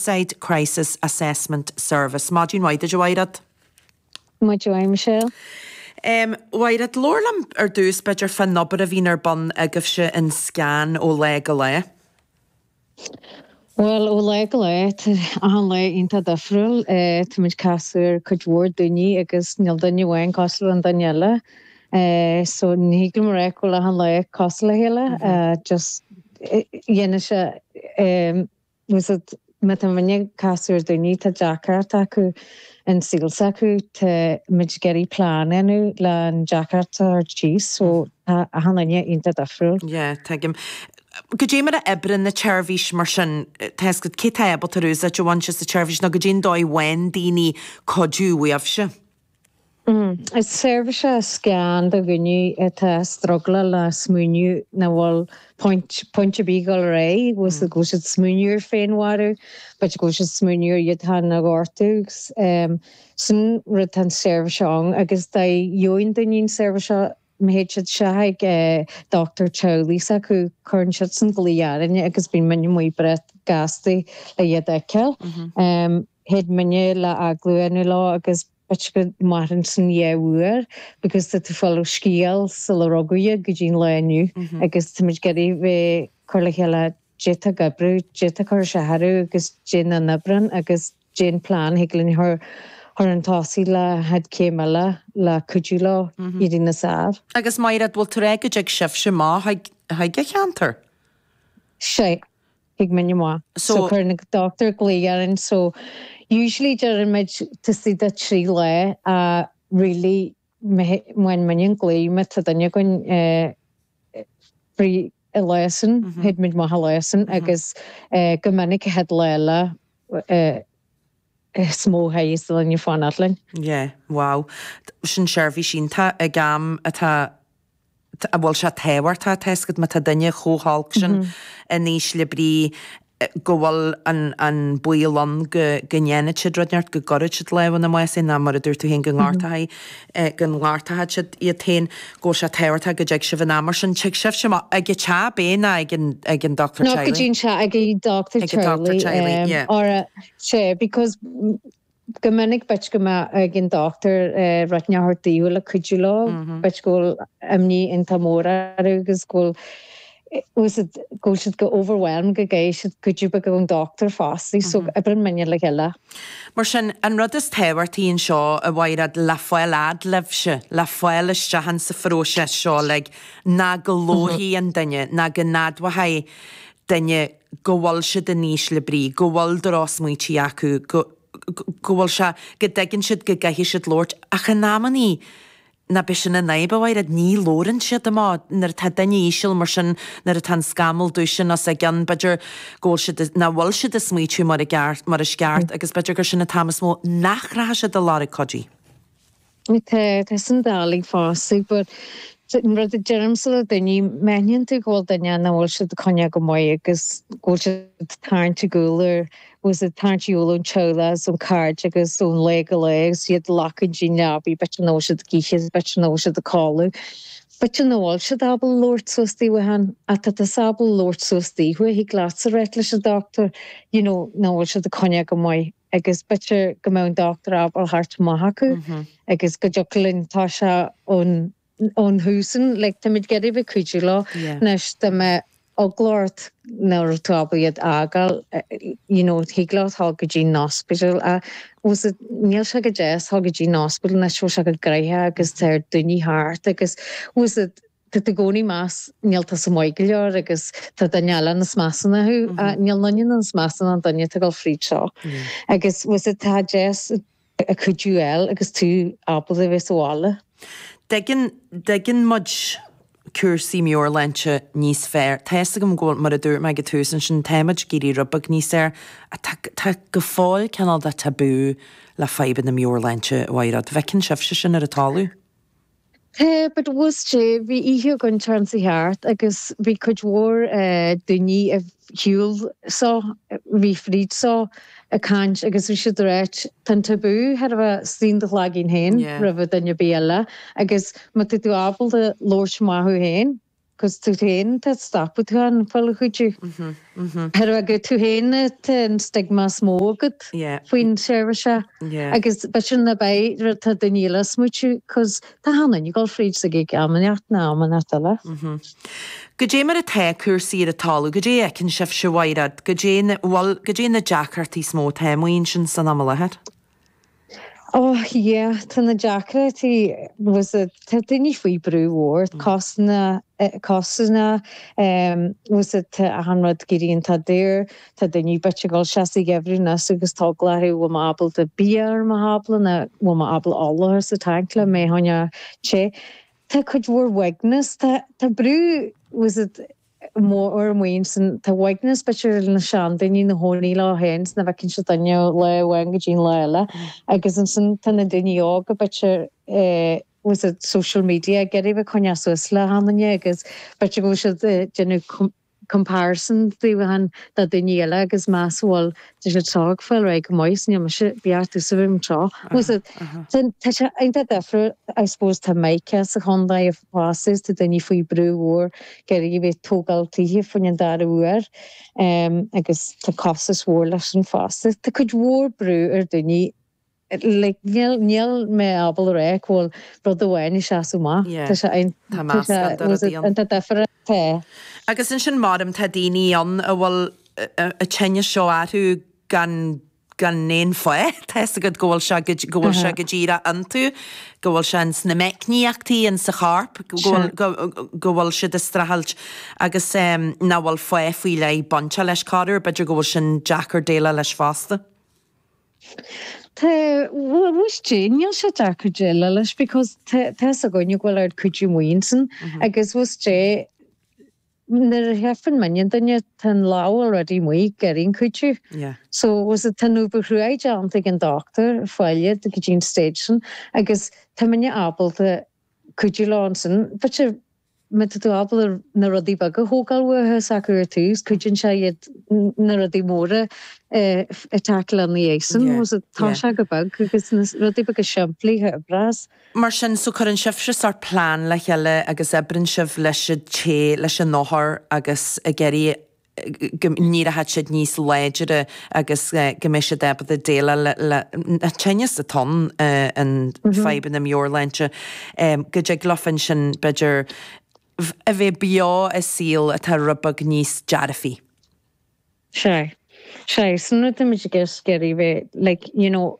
Side Crisis Assessment Service. Maidin mhaith duit, a Mháiréad. Maidin mhaith, Michelle. Um, a Mháiréad, labhair liom ar dtús, b'fhéidir, faoin obair a bhíonn ar bun agaibhse in Scan ó lá go lá. Bhuel, ó lá go lá, tá achan lá iontach difriúil. Eh, táimid ag casadh ar cuid mhór daoine agus níl duine amháin cosúil le an duine eile. Eh, so ní thig liom a rá go bhfuil achan lá cosúil le chéile. Eh, just, eh, dhéanann sé, eh, Fhios agat, bíonn muidinne ag casadh ar daoine atá deacracht acu in saol s'acu tá muid ag iarraidh plean a dhéanamh le an deacracht a thabhairt síos so tá achan duine iontach difriúil. Yeah, tuigim. Goidé mar a oibríonn an tseirbhís mar sin, tá fhios agat cé atá ábalta ar úsáid a bhaint as an tseirbhís nó goidé an dóigh a bhfaigheann daoine cuidiú uaibhse. Is seirbhís é Scan do dhaoine atá ag strugláil le smaoineamh nach bhfuil pointe a bheith ag dul ar aghaidh, go bhfuil siad ag smaoineamh ar féinmharú, go bhfuil siad ag smaoineamh ar iad féin a ghortú. Sin an rud atá an seirbhís seo ann agus dá gheobhaidh an duine an seirbhís seo, má théid siad isteach ag dochtúir teaghlaigh s'acu, cuireann siadsan glaoch orainne agus bíonn muidinne amuigh breá gasta le iad a fheiceáil. Théid muidinne le agallamh a dhéanamh leo agus b'fhéidir go mairfeadh sin dhá uair because tá tú ag fáil an scéal sular rugadh iad go dtí'n lá inniu agus táimid ag iarraidh bheith ag cur le chéile caidé atá ag oibriú, caidé atá ag cur isteach orthu agus caidé nach n-oibreann agus. Déan plean a thig linn a chur chun tosaigh leis an chéad chéim eile le cuidiú leo éirí níos fhearr. Agus a Mháiréad, bhfuil tú ag ráit go dtig sibhse amach chuig chuig an cheantar? Sea, tig muidinne amach. So cuireann an dochtúir glaoch orainn. So usually deirimid taobh istigh de trí lá, really Main minion glaoigh me ta duine againn fri i Laosain théid muid maith i Laosain agus go minic théid Leila is mó théidheas duine fain oileain. Yeah wow sin seirbhís iontach ag am atá an bhfuil sé tábhachtach tá a fhios agat má tá duine chomh holc sin in ísle brí go bhfuil an baol ann go ndéanfaidh siad rud inteacht, go gcuirfidh siad lámh ina mbás, eh, ná, mar a dúirt tú féin, go ngortóidh siad iad féin, go bhfuil sé tábhachtach go dtig sibh in am. Mar sin, tig sibhse amach ag an teach, b'fhéidir, ná ag an dochtúir teaghlaigh. Not go dtí an teach, ag an dochtúir teaghlaigh. Ag an dochtúir teaghlaigh, yeah. Sea, because. Go minic, b'fhéidir go mbeadh ag an dochtúir rud inteacht a thabhairt daofa le cuidiú leo, b'fhéidir go bhfuil imní iontach mór orthu agus go bhfuil fhios agat, go bhfuil siad chomh overwhelmed go gcaithfidh siad cuidiú beag ón dochtúir fosta, so oibreann muidinne le chéile. Mar sin, an rud is tábhachtaí anseo, a Mháiréad, le fáil a fhad libhse, le fáil isteach ann sa phróiseas seo, like, ná go labharfaidh an duine, ná go n-admhóidh duine go bhfuil siad in ísle brí, go bhfuil drochsmaoití acu, go, go bhfuil sé, go dtuigeann siad go gcaithfidh siad labhairt, ach in amannaí ná beidh sin in aib a Mháiréad, ní labhrann siad amach, nuair atá duine íseal mar sin, nuair atá an scamall dubh sin os a gcionn, b'fhéidir go bhfuil siad, nach bhfuil siad ag smaoitiú go, mar is ceart agus b'fhéidir gur sin an t-am is mó nach rachadh siad a lorg cuidiú. Tá, tá sin doiligh fosta, but an rud a deirimse le daoine, má aithníonn tú go bhfuil duine nach bhfuil siad ag coinneáil go maith agus go bhfuil siad ag tarraingt ar gcúl agus ag tarraingt ar gcúl ón teaghlach agus ó na cairde agus ó lá go lá agus iad ag glacadh don leabaidh, b'fhéidir nach bhfuil siad ag ithe, b'fhéidir nach bhfuil siad ag codladh, b'fhéidir nach bhfuil siad ábalta labhairt suas daofa féin, ach tá tusa ábalta labhairt suas daofa, thig leatsa ráit leis an dochtúir, you know, nach bhfuil siad ag coinneáil go maith. agus b'fhéidir go mbeadh an dochtúir ábalta theacht amach chucu agus go dtiocfadh linn, tá sé ón ón tús sin, like táimid ag iarraidh a bheith ag cuidiú leo. Anois dá mbeadh eagla ort nach raibh tú ábalta iad a fhágáil, you know, thig leat dhul go dtí an ospidéal, ach tá fhios agat, níl sé go deas dhul go dtí an ospidéal anois, bhfuil sé chomh gnoitheach agus tá oiread daoine thart agus tá fhios agat, Tá tú i gcónaí ag meas, níl, tá sé maith go leor agus tá duine eile níos measa ná thú. Níl duine níos measa ná an duine atá ag dul fríd seo. Agus tá fhios agat tá sé deas an cuidiú a fháil agus tú ábalta a bheith sa bhaile. An dtuigeann, an dtuigeann muid cúrsaí meabhairshláinte níos fearr. Tá fhios agam go bhfuil, mar a dúirt mé ag an tús ansin, tá muid ag éirí rud beag níos fearr ach tá, tá go fóill cineál de tabú le fadhbanna meabhairshláinte, a Mháiréad. An bhfeiceann sibhse sin ar an talamh? Tá, but tá fhios agat, bhí oíche againn Déardaoin seo thart agus bhí cuid mhór daoine a shiúil seo, bhí fríd seo, ag caint agus bhí siad ag ráit tá an tabú thar a bheith in do chloigeann féin roimhe duine ar bith eile agus má tá tú ábalta labhairt amach thú féin, 'Cause tú féin atá ag stopadh tú ag fáil cuidiú, b'fhéidir gur tú féin tá an stigma is mó agat faoin tseirbhís seo agus b'fhéidir cibé rud atá daoine eile ag smaoitiú 'Cause tá achan duine ag dul fríd seo ag am inteacht nó am inteacht eile. Goidé mar atá cúrsaí ar an talamh? Goidé a fheiceann sibhse, a Mháiréad? Goidé na, bhuel, goidé na deacrachtaí is mó atá amuigh ansin san am i láthair? Oh yeah, tá na deacrachtaí, tá fhios agat, tá daoine faoi brú mhór, cásanna, cásanna, tá fhios agat, tá achan rud ag éirí iontach daor, tá daoine b'fhéidir ag dul isteach sa gheimhreadh anois agus tá eagla orthu an bhfuil mé ábalta bia a chur ar mo thábla nó an bhfuil mé ábalta ola a chur sa tanc le mo theach a théamh, tá cuid mhór uaigneas, tá, tá brú, tá fhios agat, mór maoin san tá uaigneas b'fhéidir na seandaoine ina gcónaí leo féin is nach bhfeiceann siad éinne ó lá amháin go dtí an lá eile agus ansin tá na daoine óga b'fhéidir ar tá's agat social media ag iarraidh a bheith ag coinneáil suas le achan duine agus b'fhéidir go bhfuil siad ag déanamh comparison daofa féin le daoine eile agus meas a bhfuil Tá siad ag fáil ar aghaidh go maith, is níl mise beartaithe sa room seo. Tá sé iontach deifriúil, I suppose, tá mica sa chontae fosta, tá daoine faoi brú mhór ag iarraidh a bheith ag tógáil tithe fá choinne an dara huair agus tá costas mhór leis sin fosta. Tá cuid mhór brú ar daoine. like níl mé ábal a rá go bhfuil rud amháin ag seasamh amach, tá sé ann, tá meascán de rudaí ann, tá difear, tá. Agus ansin creidim, tá daoine ann a bhfuil an tinneas seo orthu gan gan aon fáth, tá's agat go bhfuil sé go bhfuil sé go díreach iontu, go bhfuil sé ins na meicníochtaí insa chorp, go bhfuil go go bhfuil siad ag streachailt agus em nach bhfuil fáth faoi leith bainte leis corr uair, b'fhéidir go bhfuil sin deacair déileáil leis fosta. Tá, tá's agat, níl sé deacair déileáil leis because tá, tá's againn go bhfuil an cuidiú amuigh ansin agus tá's agat, nuair a fheiceann muidinne duine, tá an lámh already amuigh ag iarraidh cuidiú. Yeah. So, tá's agat, tá an obair chruaidh déanta ag an dochtúir teaghlaigh go dtí an stage sin agus tá muidinne ábalta cuidiú leo ansin but sure, Má tá tú ábalta na rudaí beaga a thógáil uathu is acu ar tús, cuideoidh sé iad na rudaí móra a tackleáil ina dhiaidh sin. You know so, toisigh go beag, agus na rudaí beaga simplí a oibreas. Mar sin, so, cuireann sibhse sórt plean le chéile agus oibreann sibh leis an té, leis an othar, agus ag iarraidh go n-éireoidh siad níos láidre agus go mbeidh siad ábalta déileáil leis an tinneas atá ann, an fadhb na meabhairshláinte, go dtig leofa ansin, b'fhéidir, a bheith beo i saol atá rud beag níos dearfaí. Sea. Sea. Sin an rud a bhfuil muid ag iarraidh, ag iarraidh a bheith like, you know,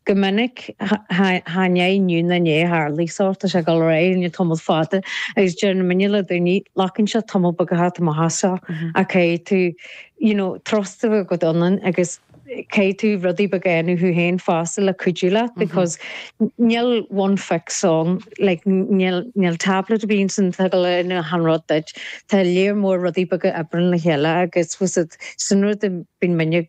Go minic, chan é inniu ná inné a tharlaigh seo, tá sé ag dul ar aghaidh fá choinne tamall fada agus deireann muidinne le daoine glacann sé tamall beag a theacht amach as seo ach caithfidh tú you know trust a bheith agat ionainn agus caithfidh tú rudaí beaga dhéanamh thú féin fosta le cuidiú leat because níl one fix ann like níl níl tablet a bhíonn ansin atá ag glanadh achan rud duit tá léar mór rudaí beaga a oibríonn le chéile agus tá's agat sin an rud a bíonn muidinne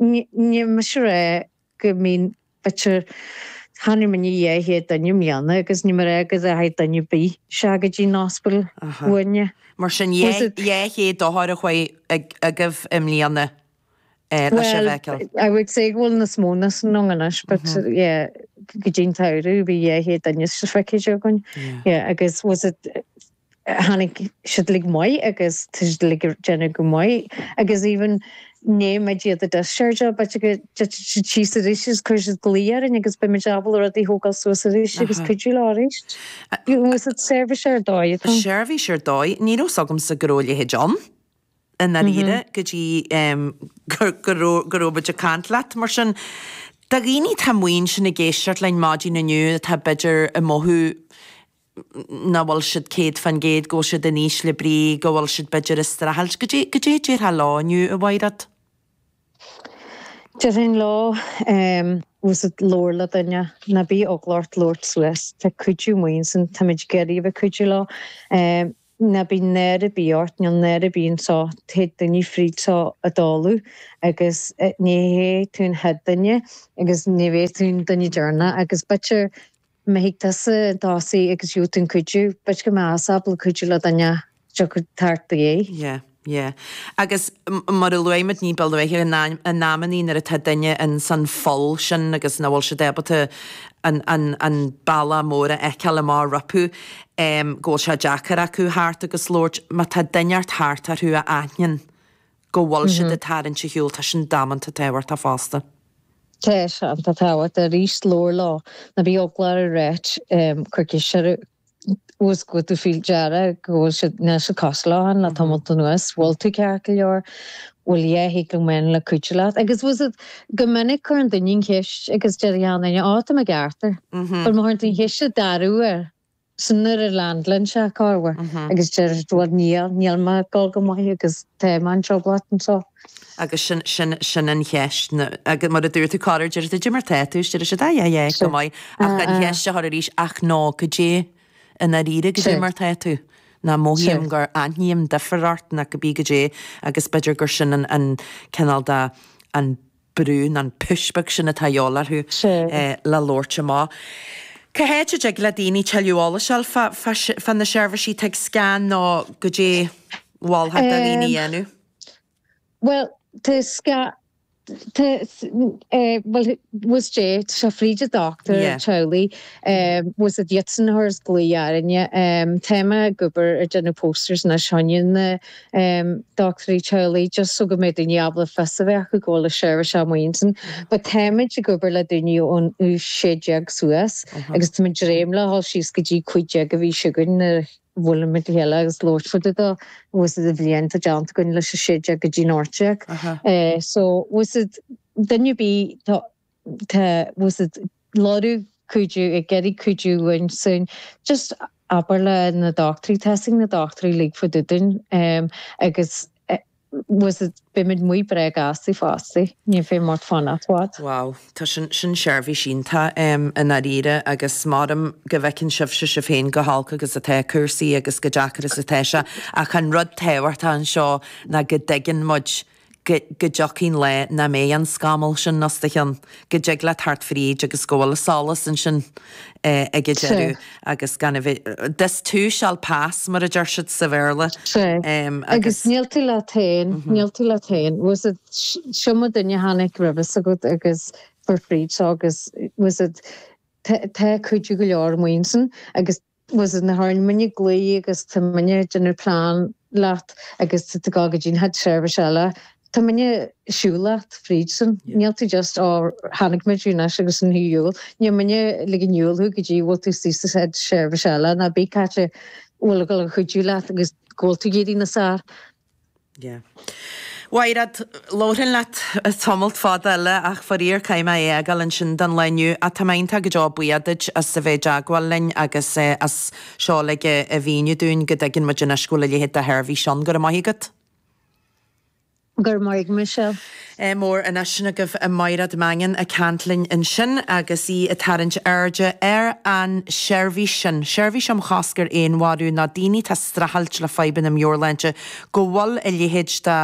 Ní miste a rá go mbíonn b'fhéidir chonaic muidinne dhá chéad duine i mbliana agus ní móide go dteachaidh duine ar bith isteach go dtí an ospidéal uainne. Mar sin, dhá chéad othar a chuaigh agaibh i mbliana leis an bhfeiceáil? Bhuel, I would say go bhfuil níos mó ná sin ann anois but yeah go dtí an tsamhradh bhí dhá chéad duine feicthe againn yeah agus tá's agat tháinig siad uilig amach agus tá siad uilig ag déanamh go maith agus even nuair a bheidh siad discharged b'fhéidir go dtitfidh siad síos arís agus cuirfidh siad glaoch orainn agus beimid ábalta rudaí a thógáil suas arís agus cuidiú leo arís. Bhfuil 's agat, seirbhís ar dóigh atá. Seirbhís ar dóigh. Ní raibh 's agamsa go raibh a leithéid ann i ndáiríre go dtí go raibh muid ag caint leat. Mar sin do dhaoine atá amuigh ansin ag éisteacht linn maidin inniu atá b'fhéidir ag mothú, nach bhfuil siad 100%, go bhfuil siad in ísle brí, go bhfuil siad b'fhéidir ag streachailt. Goidé, goidé a déarfá leo inniu, a Mhaighréad? Déarfainn leo, bhfuil 's agat, labhair le duine, ná bíodh eagla ort labhairt suas, tá cuidiú amuigh ansin, táimid ag iarraidh a bheith ag cuidiú leo. Ná bíodh náire ar bith ort, níl náire ar bith anseo, téid daoine fríd seo i dtólamh agus ní hé tú an chéad duine agus ní bhéidh tú an duine deireanach agus b'fhéidir mbeidh tusa ag tosaigh agus gheobhaidh tú an cuidiú b'fhéidir go mbeadh tusa ábalta cuidiú le duine a thiocfaidh thart i do dhiaidh. Yeah, yeah. Agus mar a luaigh muid ní ba luaithe in amannaí nuair atá duine insan pholl sin agus nach bhfuil siad ábalta an, an, an bealach mór a fheiceáil amach rompu em go bhfuil sé deacair acu theacht agus labhairt má tá duine inteacht thart orthu a aithníonn go bhfuil siad ag tarraingt ar shiúl, tá sin damanta tábhachtach fosta. Tá sin tábhachtach arís, labhair leo, ná bíodh eagla ort, cuir ceist orthu, bhfuil 's agat go bhfuil tú faoi deara go bhfuil siad, níl siad cosúil leo féin le tamalt anuas, bhfuil tú ceart go leor, bhfuil a dhath a thig liom a dhéanamh le cuidiú leat? Agus bhfuil 's agat, go minic cuireann duine an cheist agus deir an duine, á, tá mé ceart air, but má chuireann tú an cheist an dara huair. Sin nuair a leaindeálann sé i gceart agus deir sé, bhuel, níl, níl mé ag dul go maith agus tá mé i dtrioblóid anseo. Agus sin, sin, sin an cheist, agus mar a dúirt tú corruair, deir tú, goidé mar tá tú, deir siad, aye, aye, go maith, ach an cheist a chur arís, ach no, goidé, i ndáiríre, goidé mar tá tú, nó mothaím gur aithním difear ort nó cibé goidé, agus b'fhéidir gur sin an, an cineál de, an, brú nó an push beag sin atá a dhíobháil orthu le labhairt amach. Cá háit a dtig le daoine tuilleadh eolais a fháil fá na seirbhísí atá ag Scan nó goidé a mholfá do dhaoine a dhéanamh? Bhuel, tá sca, tá, bhuel, bhfuil 's agat, tá sé fríd an dochtúir teaghlaigh, bhfuil 's agat, iadsan a chuireas glaoch orainne, tá mé ag obair ar déanamh posters anois, fá choinne na, em, doctúirí teaghlaigh, just so go mbeidh daoine ábalta fios a bheith acu go bhfuil an tseirbhís amuigh ansin. But táimid ag obair le daoine ón aois sé déag suas agus táimid ag dréim le dhul síos go dtí cúig déag beidh 's againn nuair a bhuailfimid le chéile agus labhairt fá dtaobh de, bhfuil 's agat, an bhliain atá déanta againn leis an sé déag go dtí an ocht déag. Eh, so, bhfuil 's agat, duine ar bith atá. Tá tusa ag lorg cuidiú ag iarraidh cuidiú ansin. Just abair leis na dochtúirí, tuigeann na dochtúirí, ligfidh siad dúinn agus usaid beimid breá sásta fosta. Níl faic ort fanacht i bhfad. Wow, tá sin, sin seirbhís iontach i ndáiríre agus mothaím go bhfeiceann sibhse sibh féin go holc agus atá cúrsaí agus go deacair agus atá sé ach an rud tábhachtach anseo ná go dtuigeann muid go dtiocfaidh an lá nach mbeidh an scamall sin os do chionn, go dtig leat theacht fríd agus go bhfuil solas ansin ag an deireadh agus gan a bheith, this too shall pass, mar a deir siad sa Bhéarla. Agus níl tú leat féin, níl tú leat féin. You know, is iomaí duine a tháinig romhatsa agus chuaigh fríd seo agus you know, tá cuidiú go leor amuigh ansin agus. you know, nuair a chuireann muidne glao agus tá muidne ag déanamh plean leat agus tú ag gabháil go dtí an chéad seirbhis eile tá muidne ag siúl leat fríd sin níl tú just ó tháinig muid anois agus an thú iúl níl muidne ag ligean ar shiúl thú go dtí go bhfuil tú suas sa chéad seirbhis eile ná bí cá háit a bhfuil ag dul a chuidiú leat agus go bhfuil tú ag éirí níos fearr. A Mháiréad, labharfainn leat tamalt fada eile ach faraor caithfidh mé é a fhágáil ansin don lá inniu ach tá mé iontach go deo buíoch duit as a bheith i dteagmháil linn agus as seo uilig a mhíniú dúinn go dtuigeann muid anois go bhfuil a leithéid de sheirbhís ann. Go raibh maith agat. Go raibh maith agat Michelle. Ádh mór Anois sin agaibh í Máiréad Mangan ag caint linn ansin agus í ag tarraingt airde ar an tseirbhís sin, seirbhís um chosc ar fhéinmharú ná daoine atá ag streachailt le fadhbanna meabhairshláinte, go bhfuil a leithéid de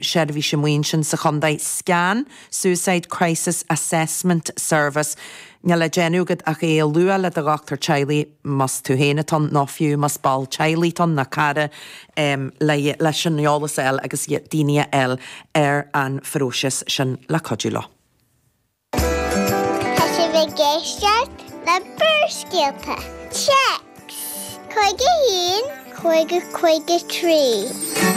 sheirbhís amuigh ansin sa chontae, scan, Suicide Crisis Assessment Service. Níl le déanamh agat ach é a lua le do dhochtúir teaghlaigh. más tú féin atá ann nó fiú más ball teaghlaigh atá ann nó cara leis an eolas a fháil agus daoine a fháil ar an phróiseas sin le cuidiú leo. Tá sibh ag éisteacht le Barrscéalta, Téacs, chuig a. cúig 53.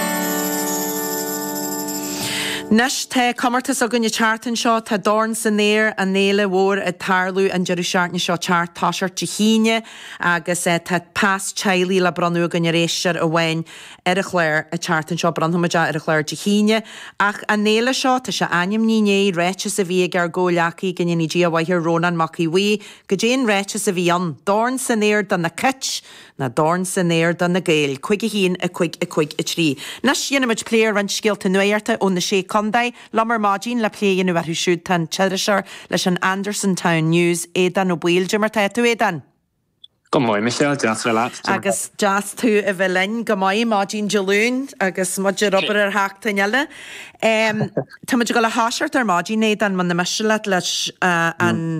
Anois tá comórtas againn an tseachtain seo. Tá dorn san aer, an fhéile mhór ag tarlú an deireadh seachtaine seo ag teacht, ag toiseacht Dé hAoine, agus tá pas teaghlaigh le bronnadh againn ar éisteoir amháin ar an chlár an tseachtain seo. Bronnfaimid é ar an chlár Dé hAoine. Ach an fhéile seo, tá sé ainmnithe i ndiaidh ráiteas a bhí ag ár gcomhghleacaí, go ndéanaí Dia a mhaith air, Rónán Mac Aodh Bhuí. Go deimhin ráiteas a bhí ann. Dorn san aer do na Gaeil! Na dorn san aer do na Gaeil, cúig a haon, a cúig, a cúig a trí. Anois déanfaimid plé ar roinnt scéalta nuachta ó na Sé Chontae. Liom ar maidin le plé a dhéanamh orthu siúd tá an t-iriseoir leis an Andersontown News, Aodán Ó Baoill. Caidé mar tá tú, Aodán? Go maith, Michelle, deas a bheith leat. Caidé mar tá. Agus deas tú a bheith linn. Go maith, maidin Dé Luain agus muid ar obair ar sheachtain eile. Táimid ag dul a thoiseacht ar maidin, Aodán, muna miste leat, leis an.